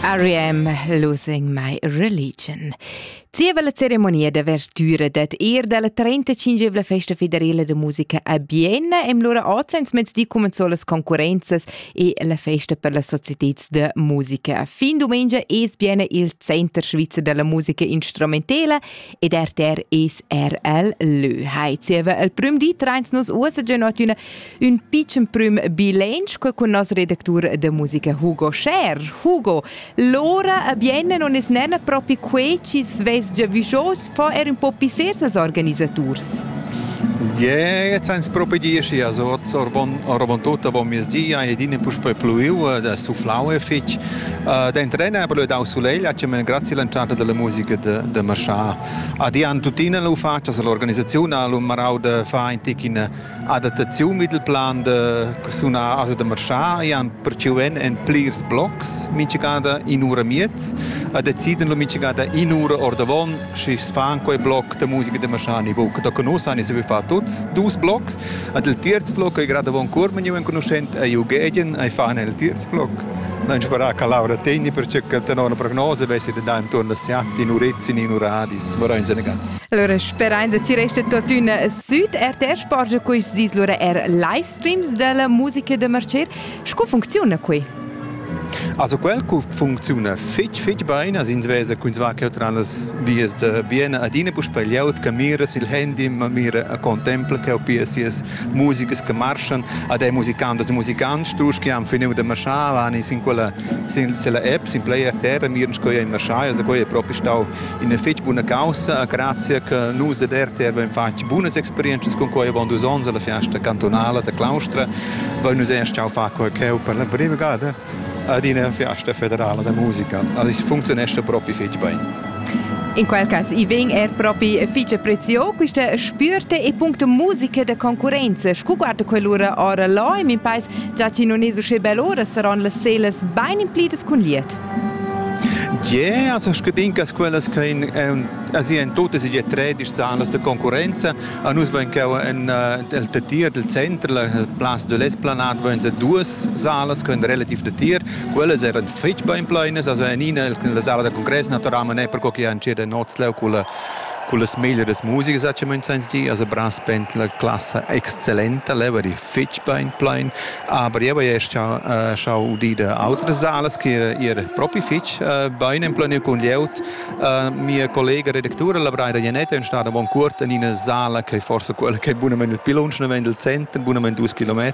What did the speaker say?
R.E.M. Losing My Religion. Zieva la ceremonia d'avertüra dad ir dalla 35 Festa Federela de Musica a Bienna im lura oz ins mezdi cumenzò las concurrenzas e la festa per las societats de musica. Fin domenica es Bienna il center svizzer della musica instrumentela ed RTR es er el lö. Hai, zieva el prüm di trains nos uossa già üna ün pitschen prüm bilanch con nos redactur de musica Hugo Scher. Hugo, l'ora bien non es nena propi quei ci svess già vijos fa er un po pisser ses organisaturs. Je, jetzt eins propi dieci, also oravon tutta von mes dia e din puspe pluiu da sufflaue fich. Den trena aber dau sulegl, hat mir grazie lanciata della musica de de marchar. Adian tuttina lu fatschas all'organisaziun ha lu marau da far in tic ina adattaziun vid il plan da sunar asa da marschar e han perciu en en plirs blocs minchegada in ura miez a deciden lu minchegada in ura ordavon schi fan quei bloc da musica da marschar ni buca da conossan e se vi far tuts dus blocs ad il terz bloc ei gerade von curmen ju enconuschent ei u gegen ei fan el terz Non sperà che Laura tegni perciò che tenor una prognosa vessi da dare intorno a Siat in Urezin in Uradis. Mora in Senegal. Allora sperein che ci resta tuttina sud RTR sporge questi dis lura er live streams della musica da marcer. Sco funziona qui? Also quel funziona fitch fitch bene as ins vesa quins va che tra las vias da Vienna adina puspei liaut che mira sil handy ma mira a contempla che o pias musigas che marschan ad ei musicantas e musicants, dus che han finiu de marschar, han in sin quella sin la app, sin Play RTR, miren sco ei marschai, also quei è proprio stau in fetg buna causa, grazie che nus de RTR abbiamo fatto buone esperienze con quei avon dus onns alla fiesta cantonale de Claustra, voi nus erst jau fa quei cheu per la prima gada. ad ina fiasta federala da musica. Also funzionesce proprio fitg bene. In quel cas i vegn er propi fitg prezio questa spürte e puncto musica da concurenza. Scu guarda quell'ura ora là in pais già ci non è usce bell'ora saran las selas ben implidas cun liet. Yeah, also ich denke, dass quellas che in, also in tutte si je tredisch salas de concurenza, a nus ven che in del tier del centro, la place de l'esplanade ven se duas salas ch'en relativ datier, quellas eran fitg bain plainas, also en ina la sala da congress naturalmein è perco che han ceda Notsleu con con las meglieres musiche sacciament sens di, also brass band la classa exzellenta, leva di fitg bein plein, aber io hai schau uh, schau udir da altres salas che era, era propi fitg uh, bein en planiu con lieut. Uh, mia collega redactura Labraida Janetta è stata bon curt in una sala che forse quella che è bunamente il pilunsch, non vende il cento, bunamente 2 km,